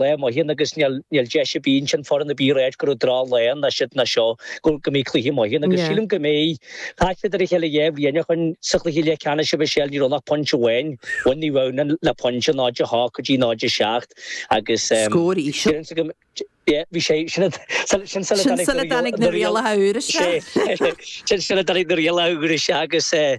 Lae maith ann agus níl deis a bhíonns an foireann a bheith ag ráit go raibh drochlá ann ná siúd ná seo go mbeidh cluiche maith ann agus sílim go mbeidh chas siad ar a chéile dhá bhliain ó shin sa chluiche leathcheannais a Mhichelle ní raibh ach pointe amháin bhain Naomh Adhamhnáin le pointe 0-8 go dtí 0-7 agus Scór íseal. Bhí bhí sé sin sula dtáinig na rialacha úra seo. Sin sula dtáinig na rialacha úra seo agus eh.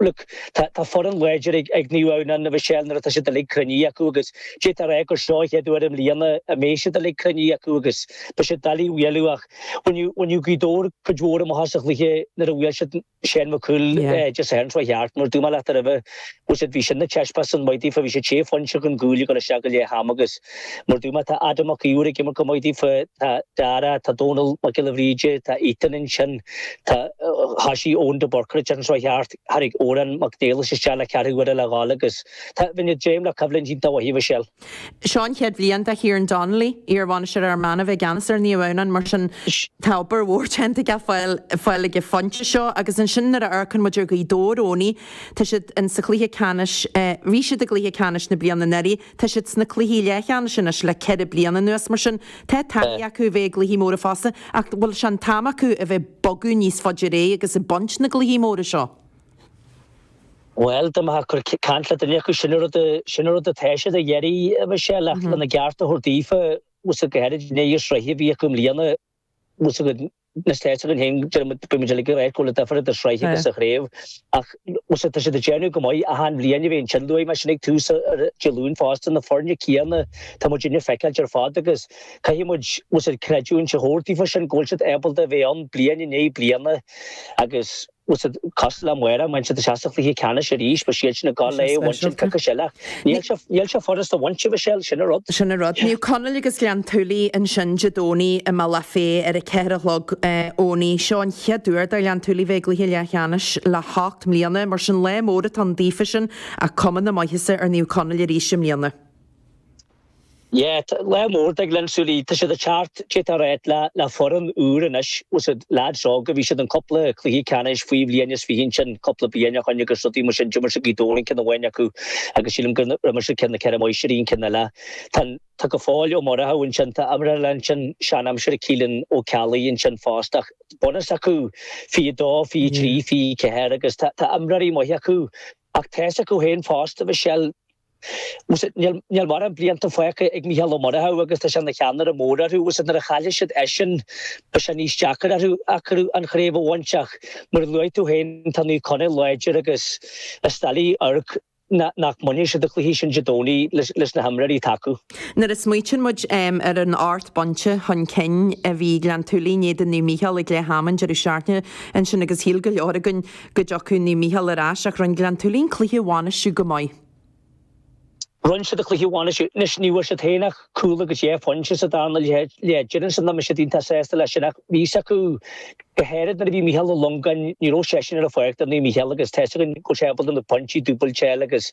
Look, tá foireann láidir ag Naomh Adhamhnáin a Mhichelle nuair atá siad uilig cruinnithe acu agus d'fhéadfá a rá gur seo an chéad uair i mbliana a mbeidh siad uilig cruinnithe acu agus beidh siad doiligh a bhualadh ach bhainfeadh Gaoth Dobhair cuid mhór amach as an chluiche nuair a bhuail siad Seán Mac Cumhaill Dé Sathairn chuaigh thart mar dúirt mé leat roimhe bhfuil a fhios agat bhí sin ina thaispeántas maith daofa bhí siad sé phointe chun cúil ag dul isteach go leath am agus Mar dúirt mé tá Adam Mac Íomhair ag imirt go maith daofa, tá Dara, tá Dónal Mac Giolla Bhríde, tá Ethan ansin, tá hasí Eoin de Búrca ag dearn seo cheart, tháinig Odhrán Mac Niallais isteach le ceathrú uaire le gabháil agus tá muidne ag dréim le coimhlint iontach mhaith a Mhichelle. Seo an chéad bhliain do Kieran Donnelly, iar-bhainisteoir Fhear Manach, a bheith i gceannas ar Naomh Adhamhnáin, mar sin tá obair mhór déanta aige fáil fáil ag an phointe seo agus ansin nuair a amharcann muid ar Ghaoth Dobhair, Eoiní, tá siad in sa chluiche ceannais, bhí siad i gcluiche ceannais na bliana anuraidh. Tá siad sna cluichí leathcheannais anois le ceithre bliana anuas, mar sin tá taithí acu a bheith i gcluichí móra fosta, ach an bhfuil sé an t-am acu a bheith ag bogadh níos faide ar aghaidh agus ag baint na gcluichí móra seo? Bhuel, dá mbeifeá ag caint le duine acu, sin an rud atá siad ag iarraidh, a Mhichelle, ach lena gceart a thabhairt daofa, go háirid i ndiaidh an tsraith a bhí acu i mbliana, na tá a fhios againn féin, bíonn muid uilig ag ráit go bhfuil duifear idir sraith agus sa chraobh ach tá siad ag déanamh go maith, achan bhliain a bheith ansin luaigh mé sin ag tús Dé Luain fosta, na foirne céanna tá muid ag feiceáilt ar fad agus caithfidh muid creidiúint a thabhairt daofa sin go bhfuil siad ábalta a bheith ann bliain i ndiaidh bliana agus Bhfuil a fhios agat cosúil le má bhaineann siad amach cluiche ceannais arís, beidh siad sin ag gabháil a bhaint an cluiche sin ach níl sé furast a bhaint, a Mhichelle, sin an rud. Sin an rud. Naomh Conaill agus Gleann tSúilí ansin Dé Domhnaigh i mBealach Féich ar a ceathair a chlog Eoiní. Seo an chéad uair do Ghleann tSúilí bheith i gcluiche leathcheannais le hocht mbliana, mar sin lá mór atá ann daofa sin ach cuma na maitheasa ar Naomh Conaill arís i mbliana. Yeah, tá lá mór ag Gleann tSúilí. Tá siad ag teacht ar aghaidh le, le foireann úr anois. Bhfuil a fhios agat lads óga, bhí siad in cúpla cluiche ceannais faoi bhliain is fiche ansin cúpla bliain ó shoin agus so bhí muid sin, d'imir siad Gaoth Dobhair an ceann amháin acu agus sílim gur imir siad ceann na Ceithre Máistirí an ceann eile. Tá, tá go fóill Ó Murchadha ansin, tá imreoir eile ansin sean aimsire Caolán Ó Ceallaigh ansin fosta ach bunús acu fiche a dó, fiche a trí, fiche a ceathair agus tá, tá imreoirí maithe acu ach tá's acu féin fosta Michelle, Níl mórán blianta fágtha ag Mícheál Ó Murchú agus tá sé ina cheannaire mór orthu. Nuair a chaillfidh siad eisean beidh sé níos deacra orthu an chraobh a bhaint ach, mar a luaigh tú féin, tá Naomh Conaill láidir agus is doiligh amharc nach mbainfidh siad an cluiche sin Dé Domhnaigh leis na himreoirí atá acu. Nuair a smaoitíonn muid ar an ocht bpointe chun cinn a bhí Gleann tSúilí in éadan Naomh Mícheál ag leath am an deireadh seachtaine ansin agus shíl go leor againn go dtiocfadh Naomh Mícheál ar ais ach rinne Gleann tSúilí an cluiche a bhainistiú go maith. Rinne siad an cluiche a bhainistiú. Anois, ní bhfuair siad féin ach cúl agus dhá phointe sa dara leath. Deireann siad nach mbeidh siad iontach sásta leis sin ach bhí's acu, go háirid nuair a bhí Mícheál Ó Longáin, ní raibh seisean ar an pháirc do Naomh Mícheál agus tá 'fhios againn go raibh sé ábalta na pointí dúbailte a fháil agus,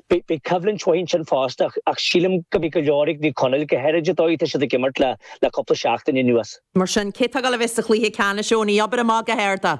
Beidh coimhlint mhaith ansin fosta ach sílim go mbeidh go leor ag Naomh Conaill. Go háirid an dóigh atá siad ag imirt le cúpla seachtain anuas. Mar sin, cé atá ag gabháil a bheith sa chluiche ceannais Eoin? Abair amach go hard é.